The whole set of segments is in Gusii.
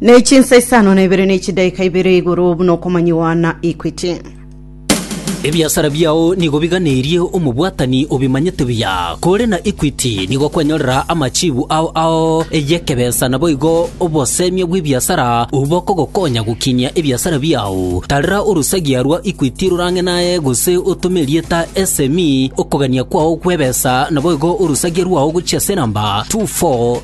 ne chinsa isano na ibere ne chidaika ibere igoro buna okomanyiwa na Equity. Ebiasara biao nigo biganerie omobwatani obimanyete buya. Kore na Equity nigo kwanyorera amachibu ao ao y'ekebesa naboigo obosemia bw'ebiasara obwo bokogokonya gokinyia ebiasara biao. Tarera orosagia rwa Equity rorang'e naye gose otome erieta SME okogania kwao gw'ebesa naboigo orosagia rwao gochia ase enamba 24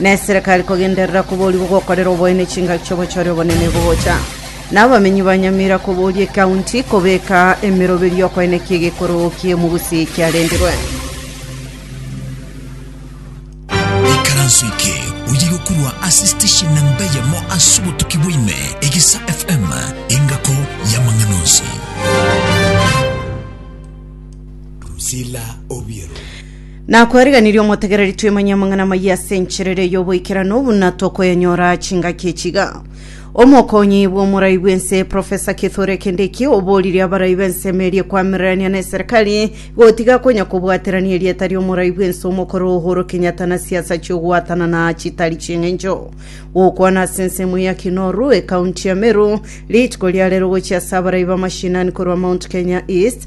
Neserekari kogenderera koboria ogokorera oboene chingaki chi'obochore obonene bogocha, na abamenyi ba Nyamira koboria ekaunti kobeka emeroberio y'okoenekia egekoroo ki'omogusi kiarendirwe. Ikaranso eke oyirwe korwa ase station namba eyemo ase obotuki bwaime, Egisa FM, engako y'amang'ana onsi. Drusilla Obiero. Nakwariganirie omotegereri twemanye amang'ana amayia ase enchera ere y'oboikeranu buna tokoyanyora chingaki echiga. Omokonyi bw'omorai bw'ense Profesa Kithure Kindiki oboririe abarai b'ensemo eria ekwamirirania n'eserekari gotiga konya kobwaterania erieta ri'omorai bw'ense omokoro Uhuru Kenyatta na siasa chi'ogwatana na chitari chi'eng'encho. Gokwana ase ensemo ya Kinoru ekaunti ya Meru rituko ria rero gochia ase abarai b'amashinani korwa Mount Kenya East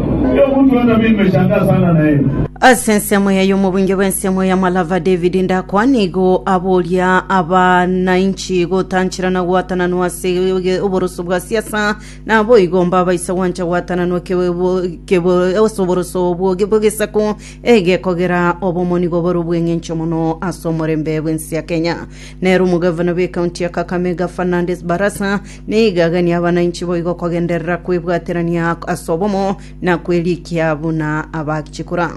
Omonto one nabiri mechanga ase ang'ana yaino. Ase ensemo eye y'omobunge bw'ensemo ya Malava David Ndakwa nigo aboria abanainchi gotanchera na gwatananwa ase oge- oboroso bwa siasa naboigo mbabaisa gwancha gwatananwa kebe- bo- kebe- ase oboroso obwo ge- bw'egesaku egekogera obomo nigo bore obw'eng'encho mono ase omorembe bw'ense ya Kenya. Nere omogavana bw'ekaunti ya Kakamega Fernandes Barasa Nigo aganie abana inche boigo kogenderera kwebwaterania ase obomo, na kwerikia buna abachikora.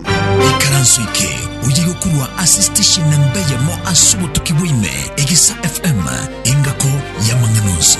Ikaranso eke oye yokorwa ase station nemba eyemo ase obotuki bwaime egesa FM engako y'amang'ana onsi.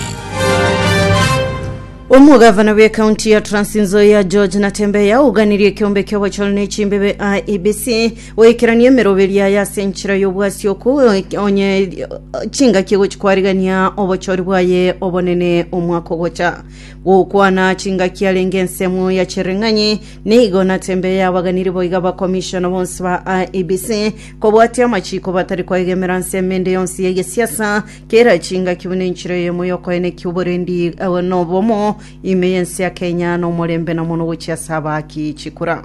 Omogavana bw'ekaunti ya Trans Nzoia George Natembeya oganirie ekeombe ki'obochore ne chimbebe IEBC Goikerania emeroberi yaye ase enchera y'obwasio oko, onye chingaki egochia kwarigania obochori bwaye obonene omwaka ogocha. Gokwana chingaki arenge ensemo ya chireng'anyi, nigo natembe yabaganiri boiga abakomishona bonsi ba IEBC kobwatia amachiko batari koegemera nsemo ende yonsi y'egesiasa, kera chingaki buna enchera eyemo y'okoenekia oborendi eh, na obomo ime y'ense ya Kenya, na omorembe na mono gochia ase abaaki chikura.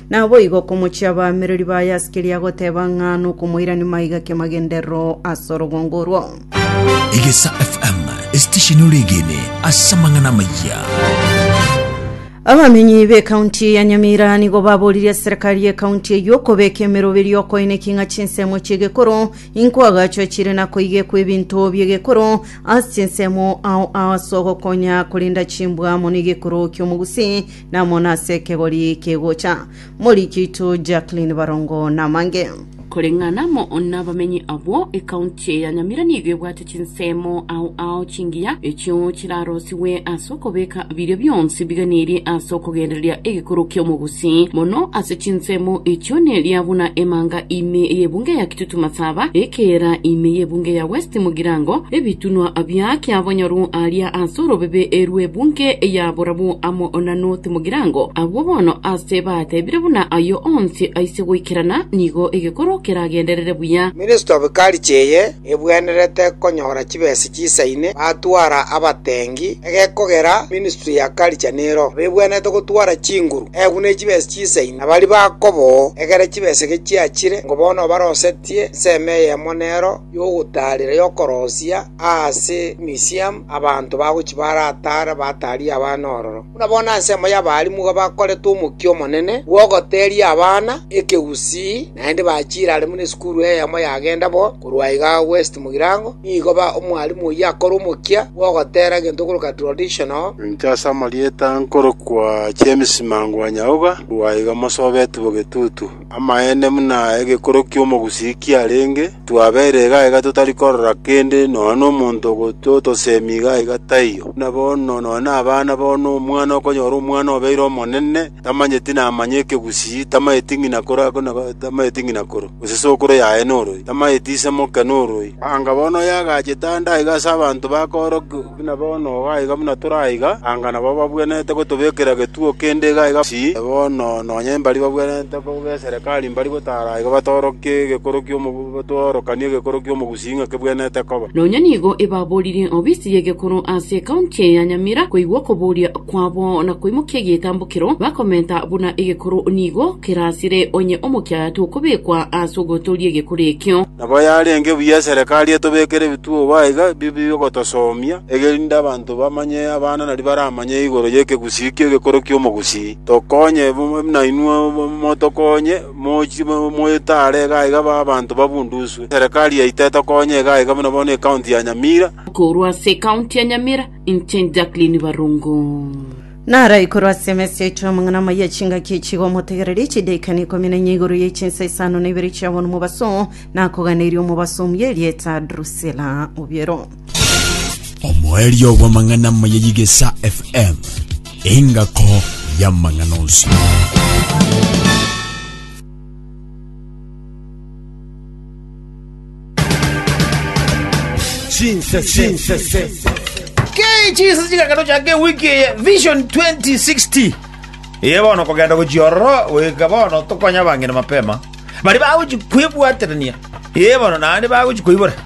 Naboigo okomochia abaamereri baye ase keria agoteba ng'a nokomoirania maiga ki'amagenderero ase orogongo orwo. Egesa FM, esitesheni oregene ase amang'ana amayia. Abamenyi b'ekaunti ya Nyamira nigo baboririe serikari y'ekaunti eyio okobeka emeroberi y'okoineki ng'a chinsemo chi'egekoro inkoagachwe chire na koigekwa ebinto bi'egekoro ase chinsemo ao ase ogokonya korenda chimbwa mono egekoro ki'omogusi Namona ase ekegori kegocha. Moriki oito Jacqueline Barongo namange. Koreng'ana amo nabamenyi abwo, ecounty ya Nyamira nigo ebwate chinsemo ao ao chingiya echio chirarosigwe ase okobeka biria bionsi biganirie ase okogendereria egekoro ki'omogusi. Mono ase chinsemo echio neria buna emanga ime y'ebunga ya Tumasaba, ekeera ime y'ebunge ya West mogirango, ebitunwa bia kiabonyoru aaria ase orobebe rw'ebunge ya borabu amo na North mogirango. Abwo bono aase batebire buna ayio onsi aise goikerana, nigo egekoro keragenderere buya. Ministry of Culture eye ebwenerete konyora chibesa chisaine batwara abatengi egekogera ministry ya culture nero abebwenerete gotwara chinguru egwe ne chibesa chinsa ime. Baria bakoba oo, egera chibesege chiachire, ngo bono barosetie ensemo eyemo nero y'ogotaarera y'okorosia aase emisiamu, abanto bagochia barataare bataarie abana ororo. Buna bono ensemo y'abaarimu iga bakorete omokia omonene bw'ogoteeria abana ekegusii. Naende bachiire are buna esukuru eyemo yagenda bo, korwa iga West mogirango, nigo ba omwalimu oyio akore omokia bw'ogoteera egento okoroka traditional, Inche ase amarieta nkorokwa James Mangwanyaoga, korwa iga mosobeti bogetutu. Amaene buna egekorokio omogusii kiarenge, twabeire iga iga totari korora kende, nonya nomonto ogocha otosemia iga iga taiyo. Buna bono nonya nabana bono, omwana okonyora omwana obeire omonene, tamanyeti namanye ekegusii, tamanyeti ng'ina koro ake na tamanyeti ng'ina koro, gose sokoro yaye noroi, tamanyeti ise moke noroi. Anga bono oyagachete ande aiga ase abanto bakoorokigwa buna bono igo aiga buna tore aiga, anga nabo babwenerete gotobekera egetugo kende iga aiga pi, na bono nonya mbari babwenerete koba eserikari mbari gotaara aiga batorokie egekorokio omogu batworokanie egekorokio omogusii. Sing'ake bwenete koba. Nonya nigo ebaboririe obisi y'egekoro ase ekaunti eye ya Nyamira koigwa okoboria kwabo na koimokia egetambokero bakomenta buna egekoro nigo kerasire onye omokia tokobekwa ase ogotooria egekoro ekio. Nabo yarenge buya eserekari etobekere ebituo obo aiga bibe bi'ogotosomia, egerinde abanto bamanye abana naria baramanye igoro y'ekegusii ki'egekoro ki'omogusii. Tokonye buna inwe motokonye. Mochie moyetare iga aiga abanto babunduswe. Serikali yaito etokonya iga aiga buna bono ecounty ya Nyamira. Korwa ase ecounty ya Nyamira, inche Jacqueline Barongo. Naro ikorwa ase emesi yaito y'amang'ana amaya chingaki echi iga omotegereri chidaika na ikomi na inye igoro ya echinsa isano na ibere chi'abonwa mobaso, nakoganeria omobaso omuya erieta Drusila. Obiero. omoerio bw'amang'ana amaya y'Igesa FM, engako y'amang'ana onsi. kechisa chigakano chake wiki eye vision 2060 iye bono kogenda gochiororo goika bono tokonya bang'ina mapema bari bagochi kwebwaterania iye bono naende bagochi koibora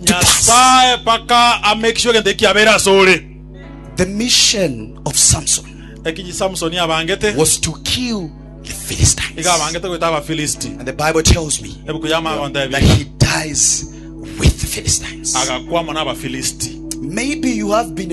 Nyasae mpaka amake sure egento eki kiabeire asore. The mission of Samson Eki Samsoni abangete, was to kill the Philistines. iga abangete goita Abafilisti. And the Bible tells me Ebuku ya Magonta that ebi he dies with the Philistines. agakwa amo n'Abafilisti. Maybe you have been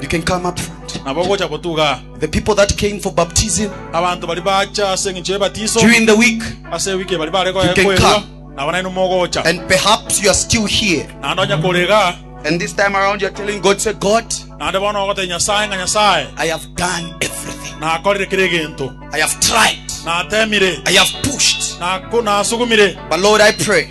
You can come up front. nabo ogocha gotuga aa. The people that came for baptism Abanto baria bacha ase eng'encho y'ebatiso, during the week, ase ewiki bari bare You can koerwa, come. nabo nainwe mogocha. and perhaps you are still here. Naende onye kore iga, And this time around, you're telling God, say, God, naende bono ogotee Nyasae ng'a Nyasae, I have done everything. nakorire kera egento, I have tried. natemire, I have pushed. naku- nasugumire, But Lord, I pray